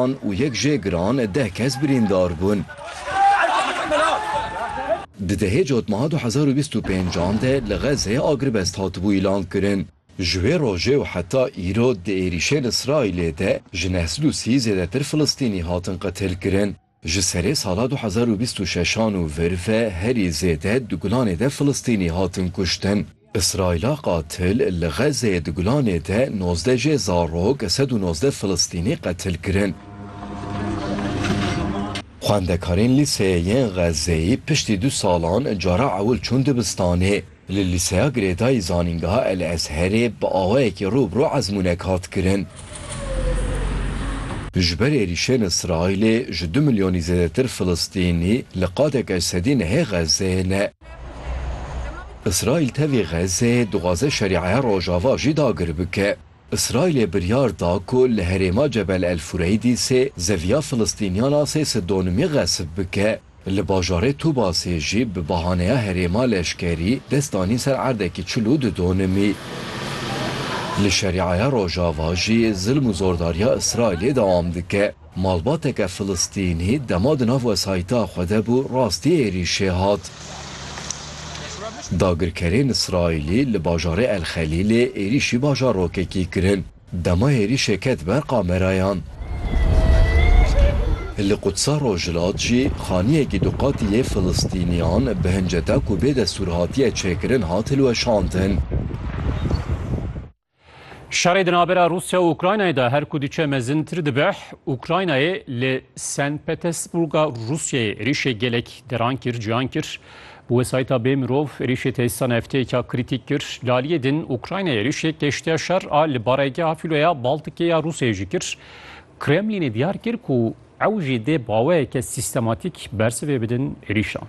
An û yek jê giran deh kes birîndar bûn. Di dehê cotmeha du hezar û bîst û pênc an de li Xezzeyê agirvest hatibû îlan kirin. Ji wê rojê û heta îro di êrîşên Îsraîlê de ji neh sed û sî zêdetir Filistînî hatin qetil kirin. Ji serê sala du hezar û bîst û şeş an û vir ve herî zêde di Gulanê de Filistînî hatin kuştin. Îsraîla qatil li Xezzeyê di gulanê de nozdeh jê zarok, sed û nozdeh Filistînî qetil kirin. Xwendekarên lîseyê yên Xezzeyê piştî du salan cara ewil çûn dibistanê. Li lîseya girêdayî Zanîngeha El Ezherê bi awayekî rû bi rû ezmûnek hat kirin. Ji ber êrîşên Îsraîlê ji du milyonî zêdetir Filistînî li qadek eşsedî nehê Xezzeyê ne. Îsraîl tevî Xezê dixwaze şerîeya Rojava jî dagir bike. Îsraîlê biryar da ku li herêma Cebel El Fureydi sê zeviya Filistîniyan a sê sidonimî xesib bike. Li bajarê Tubasê jî bi bahaneya herêma leşkerî dest danîn ser erdekî çil û du donimî. Li şerîeya Rojava jî zilm û zordariya Îsraîlê dewam dike. Malbateke Filistînî dema di nav wesayîta xwe de bû rastî êrîşê hat. Dagirkerên Îsraîlî li bajarê El Xelîlê êrîşî bajarokekî kirin. Dema êrîşê ket ber kamerayan. Li Qudsa Rojhilat jî xaniyekî du qatî yê Filistîniyan bi hinceta ku bê destûr hatiye çêkirin hat hilweşandin. Şerê di navbera Rûsya û Ukraynayê de her ku diçe mezintir dibe, Ukraynayê li Sen Petesburga Rûsyayê êrîşê gelek deran kir, ciyan kir. Bi wesayîta bê mirov êrîşê tesîsa nefteyeke krîtîk kir. Li aliyê din Ukraynayê êrîşê keştiya şer a li baregeha Fîloya Baltikê ya Rûsyayê jî kir. Kremlînê diyar kir ku ew jî dê baweyeke sîstematîk bersivê bidin êrîşan.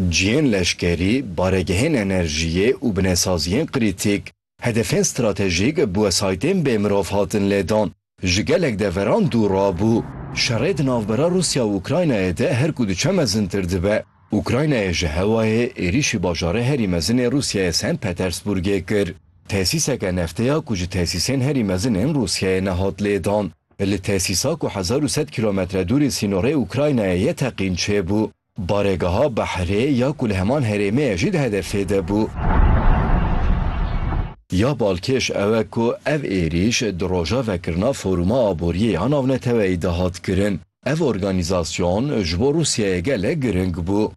Cihên leşkerî, baregehên enerjiyê û binesaziyên krîtîk hedefên stratejîk bi wesaytên bê mirov hatin lêdan. Ji gelek deveran dûr rabû. Şerê di navbera Rûsya û Ukraynayê de her ku diçe mezintir dibe. Ukraynayê ji hewayê êrîşî bajarê herî mezin ê Rûsyayê Sent Petersburgê kir. Tesîseke neftê ya ku ji tesîsên herî mezin ên Rûsyayê ne hat lêdan. Li tesîsa ku hezar û sed kîlometre dûrê sînorê Ukraynayê ye teqîn çêbû. Barêgeha behrê ya ku li heman herêmê ye jî di hedefê de bû. Ya balkêş ew e ku ev êrîş di roja vekirina Foruma Aboriyê ya Navneteweyî de hat kirin. Ev organîzasyon ji bo Rûsyayê gelek giring bû.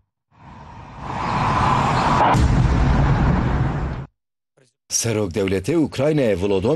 Serokdewletê Ukraynayê Volodom.